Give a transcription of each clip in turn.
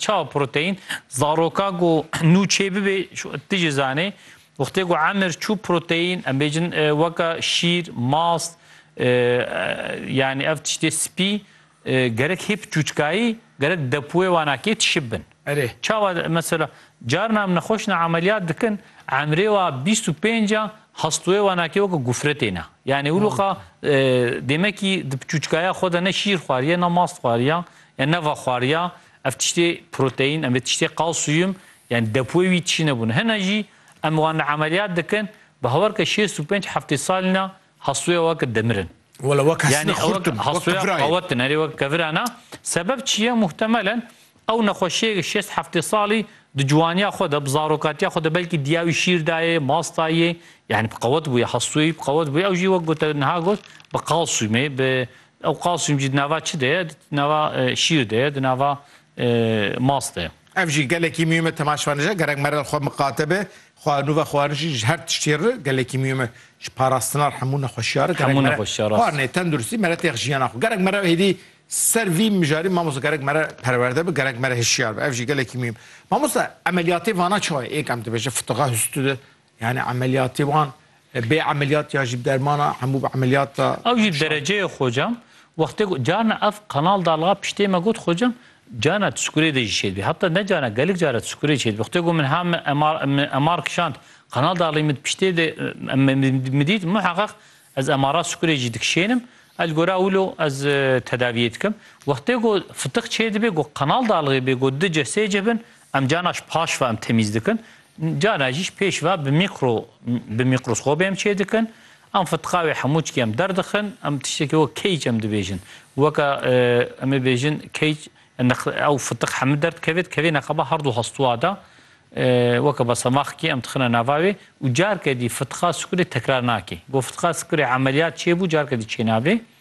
Çawa proteîn? Zaroka ku nû çêbibê ti jî zanê. Wextê ku emir çû proteîn em bêjin e, weka şîr, mast, e, yanî ev tiştê spî e, gerek hê bi çûçkayî gerek depoyê wana kê tişib bin. Erê. Çawa mesela carina em nexweş ne emeliyat dikin emrê wa bîst û pênc a hastoyê wana kê weke gofre têne. Yanî wiloqa e, demekî di bi çûçkaya xwe de ne şîr xwariye ne mast xwariya ya ne ve xwariya. Ev tiştê proteîn em vê tiştê kalsiyum yanî depoyê wî tişî nebûne. Hene jî em wan li emeliyat dikin bi hawerka şêst û pênc heftê salîna hastoya we ke demirin. Wela wek hestine xurt in, wek kevirayê. Awetin erê wek kevira na. Sebeb çi ye? Muhtemelen ew nexweşiyê şêst heftê salî di ciwaniya xwe de, bi zarokatiya xwe de belkî diya wî şîr dayê, mas dayê yanî bi qewet bûye, hastoyê wî bi qewet bûye. Ew jî wek gote niha got bi kalsiyumê, bi Ew kalsiyum jî di nava çi de ye? Di nava şîr de ye, di nava mas de ye. Ev jî gelekî mîyûm e temaşvanêje gerek merel xwe miqate be, xwe nûve xwarijî ji her tiştê re gelekî mîyûm e ji parastina re hemû nexweşiya re gerek mere xwarinê tenduristî mere têx jiyana xwe gerek mere hêdî ser vî mijarî mamosta gerek mere perwerde bi gerek mere hişyar be ev jî gelekî mîyûm. Mamosta emeliyatê vana çawa ye êk em dibêje fitixa hüstû de Yanî emeliyatê wan bê emeliyat ya jî bi dermana hemû bi emeliyat e? Ew jî dereceyê xocam wextê got carna ev kanal dalga piştê me got xocam carna tu sikurê de jî çêdibî heta ne carna gelek cara tu sikurê çêdibî wextê got min ha min MR kişand kanal dalgî min piştê de min dît muheqeq ez MRa sikurê jî dikişênim ez li gora wilo ez tedaviyê dikim wextê got fitiq çêdibê got kanal dalgê bê got di ce sê ce bin Em carna ji paş ve em temîz dikin, carna jî ji pêş ve bi mîkro bi mîkroskobê em çê dikin. Em fitka wê hemû çikê em derdixin. Em tiştekî wek keyc em dibêjin. Weke em ê bêjin keyc ew fitik hemû derdikeve dikeve neqeba her du hestûa de. Weke basemaxkî em dixine nava wê û carke dî fitka sikurê tekrar nake. Got fitka sikurê emeliyat çêbû carke dî çênabe.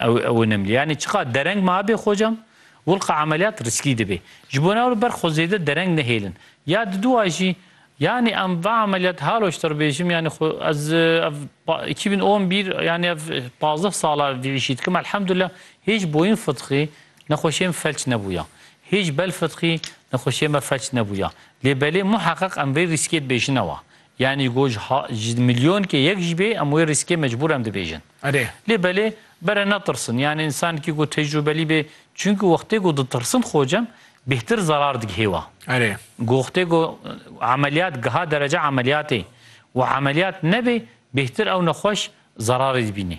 Ew ew in imlî. Yanî çiqat dereng ma hebê xocam, wilqa emeliyat riskî dibê. Ji bo ne li ber xwe zêde dereng nehêlin. Ya di dûa jî, yanî em va emeliyat Haloş te bêjim, yanî xwe ez ev îki bin on bir yanî ev pazdeh sal a vî îşî dikim. Elhamdulillah hêj boyîn fitqî nexweşiyê min felç nebûya. Hêj bel fitqî nexweşiyê me felç nebûya. Lê belê muheqeq em vê rîskê dibêjin ew a. Yanî got ji ha ji milyonkê yek jî bê em wê rîskê mecbûr em dibêjin. Erê. Lê belê bere netirsin. Yanî însankî ku tecrûbelî bê çunku wextê ku ditirsin xocem bêhtir zerar digihê we. Erê. Goxtê ku emeliyat giha derece emeliyatê û emeliyat nebê bêhtir ew nexweş zerarê dibînê.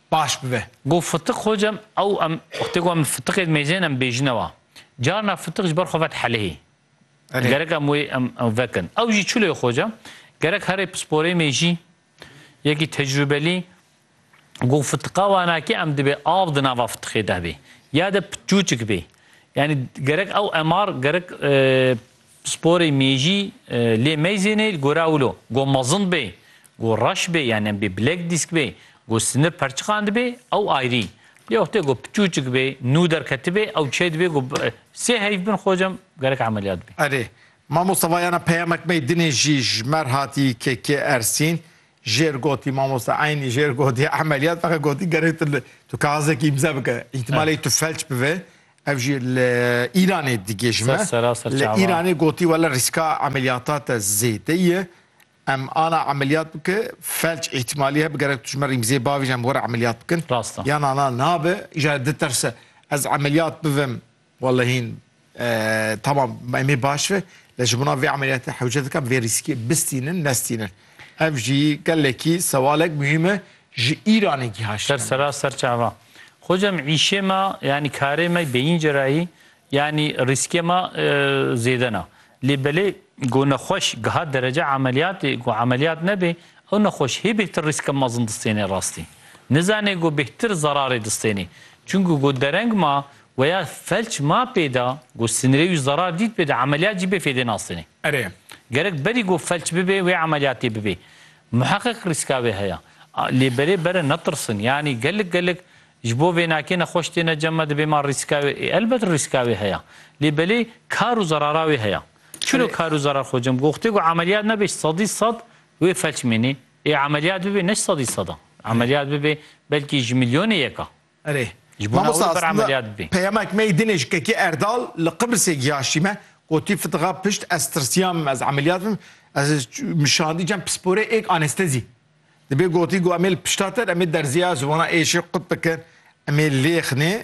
baş bibe. Got fitik hocam ew em wextê ku em fitiqê dimêjin em bêjine wa. Carna fitik ji ber xwe vet helihê. Gerek em wê em ew vekin. Ew jî çi lê hocam? Gerek herê pisporê mêjî, yekî tecrubelî got fitiqa wanakî em dibê av di nava fitiqê de bê. Ya de çûçik bê. Yanî gerek ew MR gerek Sporê mêjî lê meyzênê li gora wilo, go mezin bê, go reş bê yan em bê bilek dîsk bê, go sinir perçiqandibê ew ayrî. Lê wextê go piçûçik bê, nû derketibê ew çê dibê go sê heyv bin xocam gerek emeliyat bê. Erê, mamosta vayana peyamek mey dinê jî ji mer hatî KK Ersîn, jêr gotî mamosta eynî jêr gotî emeliyat feqet gotî gerek tu li tu kaxizekî îmza bike. Îhtimalê tu felç bive Ev jî li Îranê digihîjme. Li Îranê gotî wele rîska emeliyata te zêde ye. Em ana emeliyat bike felç îhtîmalî hebe gerek tu ji me rîmzê bavêjî em were emeliyat bikin. Rast e. Yana na nabe. Îja ye diterse ez emeliyat bivim wele hîn tamam em ê baş be lê ji bona vê emeliyatê hewce dikim vê rîskê bistînin nestînin. Ev jî gelekî sewalek muhîm e Ji Îranê giha Şam. Ser sera ser çava. Xocam îşê ma yanî karê me bêyîn cerahî yanî rîskê ma zêde na. Lê belê go nexweş giha derece emeliyatê go emeliyat nebê ew nexweş hê bêhtir rîska mezin distênê rastî. Nizanê go bêhtir zerarê distênê. Çunku go dereng ma weya felç ma pêda go sinirê wî zerar dît pêda emeliyat jî bê fêdê nastênê. Erê. Gerek berî go felç bibê wê emeliyatê bibê. Muheqeq rîska vê heye. Lê berê bere netirsin. Yanî gelek gelek ji bo vênakê nexweş têne cem me dibê ma rîska wê ê elbet rîska wê heye. Lê belê kar û zerara wê heye. Çilo Erê. kar û zerar xwe cem goxtê ku emeliyat nebe ji sedî sed wê felç mênê. Ê emeliyat bibê ne ji sedî seda. Erê. Emeliyat bibê belkî ji milyonê yeka. Erê, mamosta aslında peyamek me yê dinê ji kekê Erdal li Qibrisê giyaştî me. Gotî fitixa pişt ez tirsiyam ez emeliyat bim. Ez min şandî cem pisporê êk anestezî. Dibê gotî got em ê li pişta te em ê derziya ziwana êşê qut bikin. Em ê lêxnê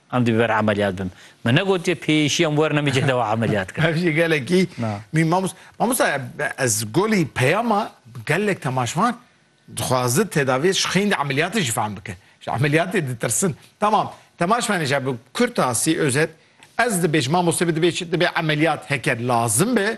Em dê bi ber emeliyat bin. Me negotiye pêyîşî em werne mijê dewa emeliyat kirin. Ev jî gelekî mî mamost. Mamosta ez golî peyama gelek temaşvan dixwazi tedaviyê ji xeyndî emeliyatê jî fehm bike. Ji emeliyatê ditirsin. Tamam temaşvanê jî bi kurtasî, özet, ez dibêjim mamostê bi dibêj dibê emeliyat heke lazim be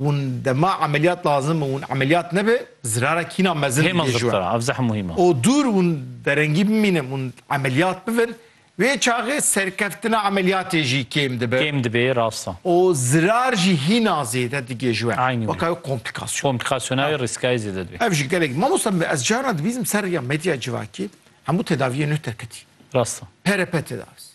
Hûn dema emeliyat lazim û hûn emeliyat nebe zirara kîna mezin Hêma dibê ji we. zirtara ev zeh muhîm e. O dûr hûn derengî bimînin hûn emeliyat bibin wê çaxê serkeftina emeliyatê jî kêm dibe Kêm dibê rast e. û zirar jî hîna zêde digê ji we. Eynî wê. Weka wê komplikasyon. Komplikasyona wê rîskayê zêde dibê. Ev jî gelek mamosta me ez carna dibîzim ser rêya medya civakî hemû tedaviyê nuh derketî. Rast e. PRP tedavisi.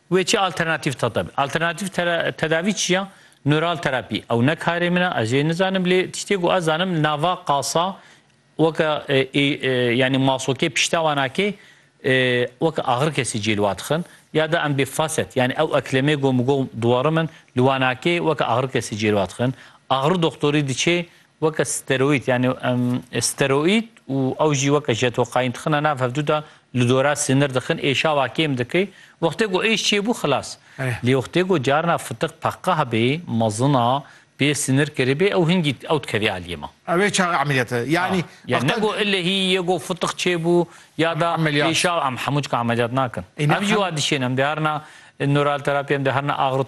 Wê çi alternatîf tedabî. Alternatîf tedavî çi ya? Nural terapî. Ew ne karê min e, ez jê nizanim lê tiştê ku ez zanim li nava qasa weke yanî masokê pişta wan a kê weke axir kesî cê li wa dixin ya da em bê faset yanî ew eklemê gom gom duwarim in li wan a kê weke axir kesî cê li wa dixin. Axir doxtorî diçê Weke steroîd yanî steroîd û ew jî weke jetokaîn dixine nav hevdu de li dora sinir dixin ê şawa kêm dike wextê ku êş çêbû xilas lê wextê ku carina fitiq peqah bê mezin a pê sinir kiribê ew hingî ew dikevê aliyê me. Ew ê çaxê emeliyate yanî. Yanî ne ku ilehî yê ku fitiq çêbû ya da ê şawa em hemû çik emeliyat nakin. Ev jî wa dişên em dê herina nuralterapiye em dê herina axirot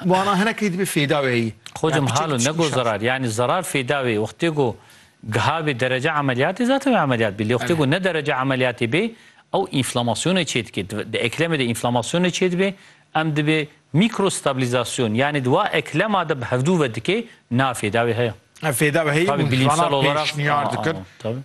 Wana hinekî dibê fêda wê heyî. Xocim halo nego zerar yanî zerar fêda wê wextê ku giha bê derece emeliyatê zaten wê emeliyat bê lê wextê ku ne derece emeliyatê bê ew înflamasyonê çê dike di eklemê de înflamasyonê çê dibê em dibê mîkrostabîlîzasyon yanî di wa eklema de bi hevdû ve dikê na fêda wê heye. Ev fêda wê heyî û wana pêşniyar dikin.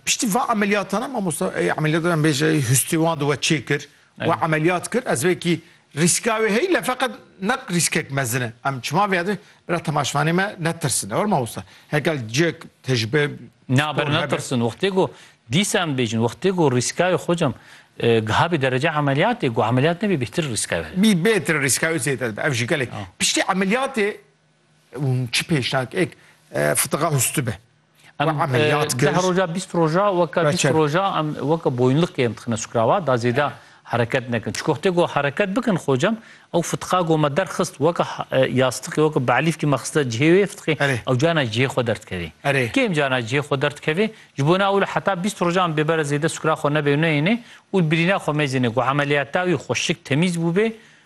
Piştî va emeliyatane mamosta emeliyata em bêje hûstê wan di we çê kir We emeliyat kir ez wekî rîska wê heye feqet ne rîskek mezin e. Em çima vêya dikin bira temaşvanê me netirsin ewr mamosta. Hekel cek tecbe Na ber netirsin wextê ku dîsa em bêjin wextê ku rîska wê xocam e, gihabî derece emeliyatê ku emeliyat nebî bêtir rîska wê. Bî bêtir rîska wê zêde dibe. Ev jî gelek. Piştî emeliyatê hûn çi pêşniyar ek e, fitiqa hûstû be. Em deh roja bîst roja weke bîst roja em weke boyunliqê em dixine sukrawa da zêde hereket nekin. Çiko xte go hereket bikin xocem ew fitqa go me derxist weke yastiqê weke be'lîfkî me xiste cihê wê fitqê ew cana cihê xwe derdikevê. Kêm cana cihê xwe derdikevê ji bo na ûle heta bîst roja em bêbere zêde sukra xwe nebê û neyêne û birîna xwe mêzêne ku emeliyata wî xweşik temîz bûbê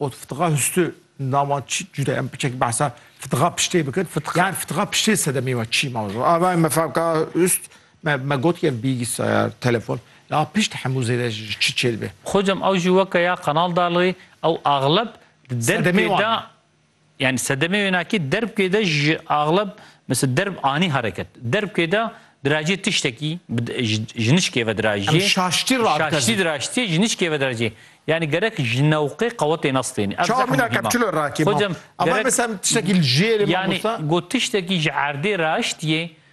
Got, Fitiqa hüstü nama çi cuda em piçek behsa fitiqa piştê bikin. Fitiqa. Yani fitiqa piştê sedemê ve çi ma jo. Ava me fevka hüst me me got ki ev bilgisayar, telefon. La pişt hemû zêde ji çi çêdibe? Xocam ew jî weke ya Kanal Dalrî ew axleb di derpê de Yani sedemê wênakî derbkê de ji axleb mesela derb anî hereket. Derbkê de dirajê tiştekî ji nişkê ve dirajê. Şaştî radkez. Şaştî dirajtî ji nişkê ve dirajê. Yani gerek ji newqê qewetê nas tênî. Ev zehma mîna kepçilo rakê. Hocam ama mesela tiştekî li jêrê mamosta. Yani got tiştekî ji erdê raştiyê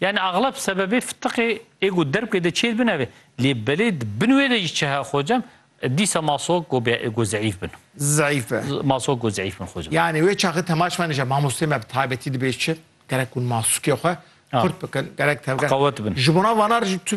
Yanî axleb sebebê fitiqê ê ku derbkê de çêr bine be. Lê belê di bin wê de jî çi heye xocem, dîsa masok ku be ê ku zeîf bin. Zeîf be. Masok ku zeîf bin xocem. Yanî wê çaxê temaş me nêje. Mamosteyê me bi taybetî dibe çi? Gerek hûn masokê xwe qurt bikin. Gerek tevger. Qewet bin. Ji bona vanar jî tu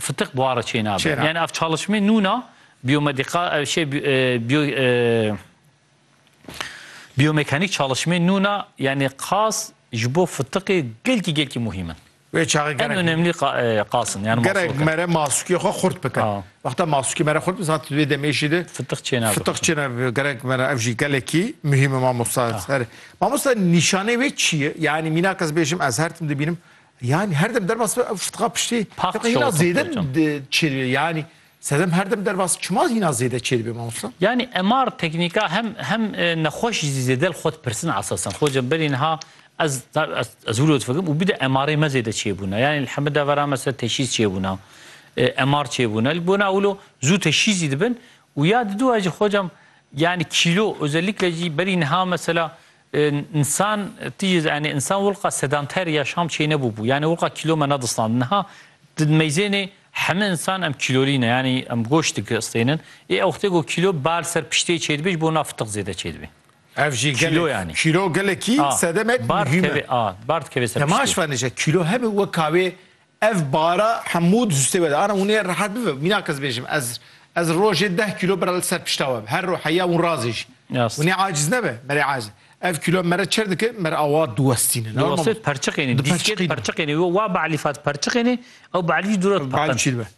Fitiq buhara çênabe. Yani ev çalışmê nûna biyomedika ev şey biyo biyomekanik çalışmê nûna yani qas ji bo fitiqê gelkî gelkî muhîm in. Wê çaxê gerek. En önemli qas in. Yani gerek mere masukê xwe xurt bike. Wexta masukê mere xurt bike zat wê demê jî de fitiq çênabe. Fitiq çênabe gerek mere ev jî gelekî muhîm e mamosta. Mamosta nîşanê wê çi ye? Yani mînak ez bêjim ez her tim dibînim Yanî her dem derbas be ev şitxa piştî Paxt hîna şewitî zêde pê çend. çêr bê. Yanî sedem her dem derbas çima hîna zêde çêr bê mamosta? Yanî MR teknîka hem hem nexweş jî zêde li xwe dipirsin esasen. Xwe ca berî niha ez ez wilo difikirim û bide MRê me zêde çêbûna. Yanî li heme devera me ser teşhîs çêbûna. MR çêbûna. Li bona wilo zû teşhîs jî dibin û ya diduwa jî xwe ca yanî kîlo özellikle jî berî niha mesela Însan tî yê yanî însan wulqa sedanter ya şam çêne bûbû. Yanî wulqa kîlo me nedistand. Niha di meyzênê heme însan em kîlolî ne. Yanî em goşt diki istênin. Ê ewqtê ku kîlo bal ser piştê çêdibê ji bo na fitiq zêde çêdibê. Ev jî gelek kîlo gelekî sedemek muhîm e. Bar dikeve ser piştê. Te maş venije kîlo hebe weka wê Ev bara hemû di zûstê we de. Ana hûnê rehet bibe. Mînak ez bêjim ez ez rojê deh kîlo bira li ser pişta we bi. Her ro heya hûn razê jî. Hûnê aciz nebe. Merê aciz. Ev kîlo mere çir dike, mer awa diwestînin. Diwestê perçiqênê. Dîskê diperçiqênê. Wa bi Elîfa diperçiqênê, ew bi Elî jî dûre diperqin.